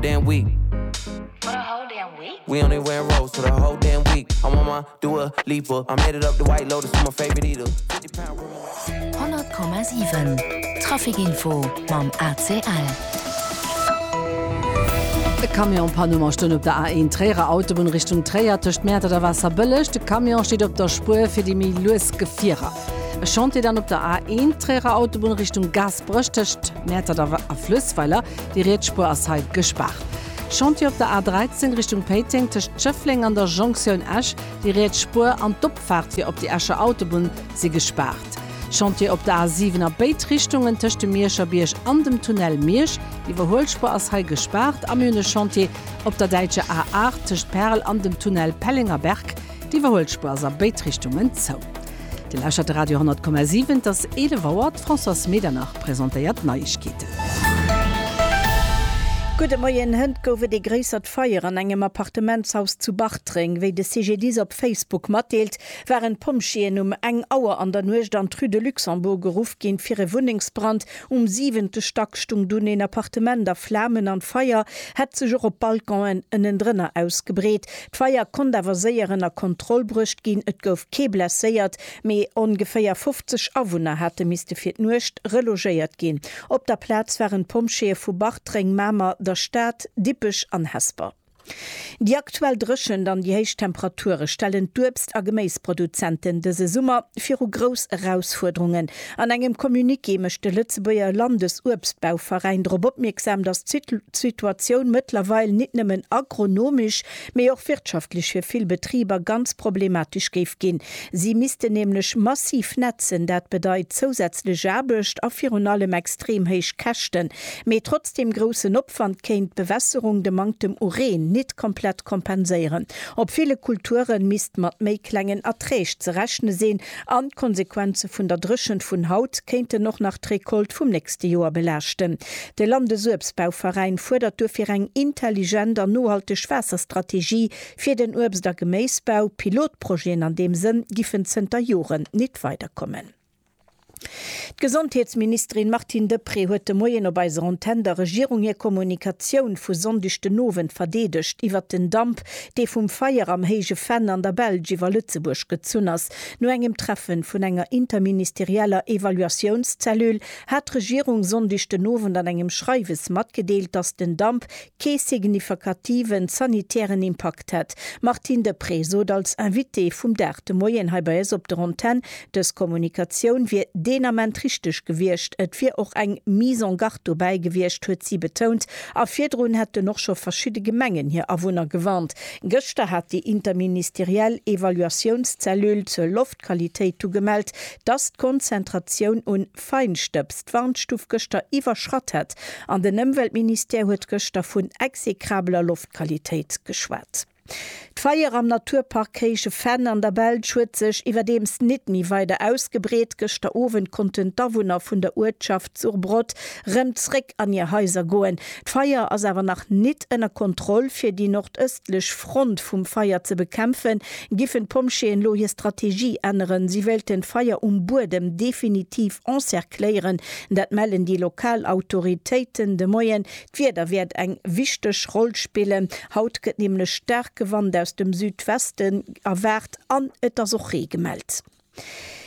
damn week For the whole damn week We only wear rose for the whole damn week I want my do a leap up I made it up the white lotus for my favorite eater 100,7 Trafikinfo mam ACL. E Camion Panne mar stoun op der A1 Tréierer Autobunn Richtung Tréier tëscht Mäertert a Waasserbëlleg. De Camion steet op der Spuer fir déi méi lues Gefierer. E Chantier dann op der A1 Tréierer Autobunn Richtung Gaasperech tëscht Mäertert a Flëssweiler. Déi riets Spuer ass hei gespaart. Chantier op der A 13 Richtung Péiteng tëscht Schëffleng an der Jonktioun Esch, déi riets Spuer an d'Opfaart fir op déi Escher Autobunn si gespaart. Chantier op der A 7 a béid Richtungen tëscht dem Mierscher Bierg an dem Tunnel Miersch, d'Iwwerhuelspuer ass hei gespaart. A mir hunn e Chantier op der däitscher A 8 tëscht Perl an dem Tunnel Pellengerberg, d'Iwwerhuelspuer ass a béid Richtungen zou. Dir lauschtert de Radio 10,7. Et ass 11 Auer, d'Françoise Medernach presentéiert d'Neiegkeeten. Gudde Moien, Hënt gouf et ee gréissert Feier an engem Appartementshaus zu Bartreng. Wéi de CGDIS op Facebook matdeelt, waren d'Pompjeeën um eng Auer an der Nuecht an d'Rue de Luxembourg geruff ginn, fir e Wunnengsbrand. Um siwente Stack stung dunn een Appartement a Flamen an d'Feier hätt sech och op Balconen ënnendrënner ausgebreet. D'Feier konnt awer séier ënner Kontroll bruecht ginn, et gouf kee blesséiert, mee ongeféier 50 Awunner hate misste fir d'Nuecht relogéiert ginn. Op der Plaz waren d'Pompjeeë vu Bartreng, Mamer, der Stad, Dippech an Hesper. Déi aktuell Dréchent an déi héich Temperature stellen d'Uebst a Geméisproduzenten dëse Summer viru grouss Erausfuerderungen. An engem Communiqué mécht de Lëtzebuerger Landesuebstbauveräin drop opmierksam, datt d'Situatioun mëttlerweil nit nëmmen agronomesch, mee och wirtschaftlech fir vill Betriber ganz problematesch géif ginn. Si missten nämlech massiv nätzen. Dat bedeit zousätzlech Aarbecht a virun allem extrem héich Käschten. Mee trotz deem groussen Opwand kéint d'Bewässerung de Manktem u Reen nit komplett kompenséieren. Op ville Kulture misst mat méi klengen Erträg ze rechne sinn, An d'Konsequenze vun der Dréchent vun haut kéinten och nach d'Recolte vum nächste Joer belaaschten. De Landesuebstbauveräin fuerdert duerfir eng intelligent an nohalteg Waasserstrategie fir den Uebst a Geméisbau. Pilotprojeten an deem Sënn giffen zënter Joren nit weiderkommen. D'Gesondheetsministerin Martine Deprez huet de Moien op eiser Antenn der Regierung hir Kommunikatioun vu Sonndeg den Owend verdeedegt iwwert den Damp, dee vum Feier am Héije Venn an der Belsch iwwer Lëtzebuerg gezunn ass. No engem Treffen vun enger interministerieller Evaluatiounszellule hat d'Regierung Sonndeg den Owend an engem Schreiwes matgedeelt, datt den Damp kee signifikativen sanitären Impakt hätt. D'Martine Deprez sot als Invitée vum Dag de Moien hei bei eis op der Antenn, Dës Kommunikatioun wier deen Ament richteg gewiescht. Et wier och eng Mise en garde dobäi gewiescht, huet si betount. A virdrun hätten och scho verschidde Gemengen hir Awunner gewarnt. Gëschter hat déi interministeriell Evaluatiounszellule zur Loftqualitéit du gemellt, dass d'Konzentratioun un Feinstëbs d'Warnstuf gëschter iwwerschratt hätt. An den Ëmweltministère huet gëschter vun exekrabler Loftqualitéit geschwat. D'Feier am Naturpark Kréische Venn an der Belsch huet sech iwwerdeems nit méi weider ausgebreet. Gëschter Owend konnten d'Awunner vun der Uertschaft Surbrot rem zréck an hir Haiser goen. D'Feier ass awer nach nit ënner Kontroll. Fir déi nordëstlech Front vum Feier ze bekämpfen, giffen d'Pompjeeën lo hir Strategie änneren. Si wéilten d'Feier um Buedem definitiv encercléieren. Dat mellen déi lokal Autoritéiten de Moien. D'Wieder wäert eng wichteg Roll spillen. Haut gëtt nämlech staarke Wand aus dem Südwesten erwaart an et ass och Ree gemellt.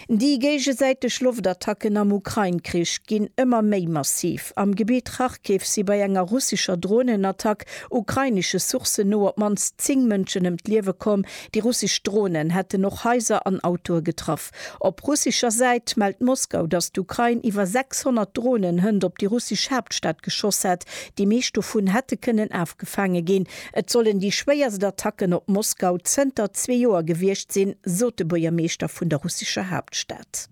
Déi géigesäiteg Loftattacken am Ukrain-Krich ginn ëmmer méi massiv. Am Gebitt Kharkiv si bei enger russescher Dronenattack ukrainesche Sourcen no op d'mannst 10 Mënschen ëm d'Liewe komm. Déi russesch Dronen hätten och Haiser an Autoe getraff. Op russescher Säit mellt Moskau, datt d'Ukrain iwwer 600 Dronen hënt op déi russesch Haaptstad geschoss hätt. Déi meescht dovun hätte kënnen afgefaange ginn. Et sollen déi schwéierst Attacken op Moskau zënter zwee Joer gewiescht sinn, sot de Buergermeeschter vun der russescher Haaptstad.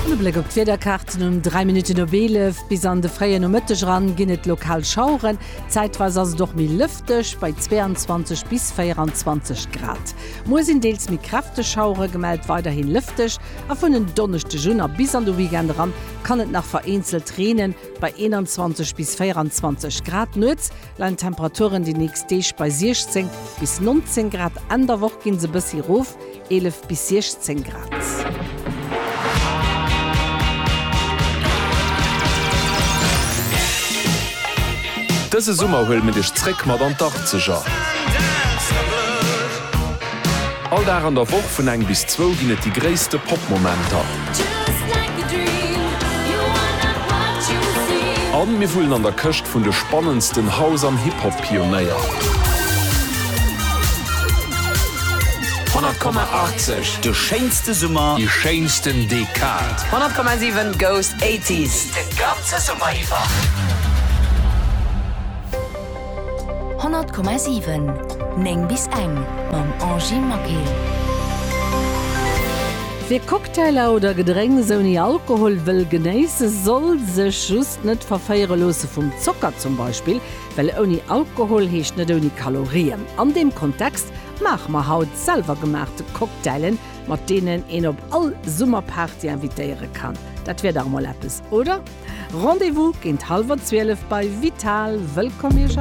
E Bléck op d'Wiederkaarten, Um 3 Minutten op 11 bis an de fréie Nomëtteg eran ginn et lokal Schaueren, zäitweis ass et och méi lëfteg. Dësch bei 22 bis 24 Grad. Muer sinn deels méi kräfteg Schauere gemellt, weiderhi lëfteg a vun en Donneschdeg un a bis an de Weekend eran kann et nach vereenzelt reenen, bei 21 bis 24 Grad. Nuets leien d'Temperaturen déi nächst Deeg bei 16 bis 19 Grad, Enn der Woch ginn se e bëssi erof, 11 bis 16 Grad. Dëse Summer huele mir dech zréck mat an d'Arzeger. All Dag an der Woch vun eng bis zwou ginn et déi gréisste Pop-Momenter. A mir wullen an der Këscht vun de spannendsten House an Hip-Hop. Pionéier. 100,80, De schéinste Summer. Déi schéinsten Dekad. 100,7, Goes 80s, De ganze Summer iwwer. 100,7, 9 bis eng, Mam Angie Maquet. Wie Cocktailer oder Gedrénks ouni Alkohol wëll genéisse soll sech just net verféiere loosse vum Zocker zum Beispill. Well ouni Alkohol heescht net ouni Kalorien. An deem Kontext maache mer haut selwergemaachte Cocktailen, mat deenen een op all Summerparty invitéiere kann. Dat wier dach emol eppes, oder? Rendez-vous géint hallwer 12 bei Vital! Wëllkomm Iech all!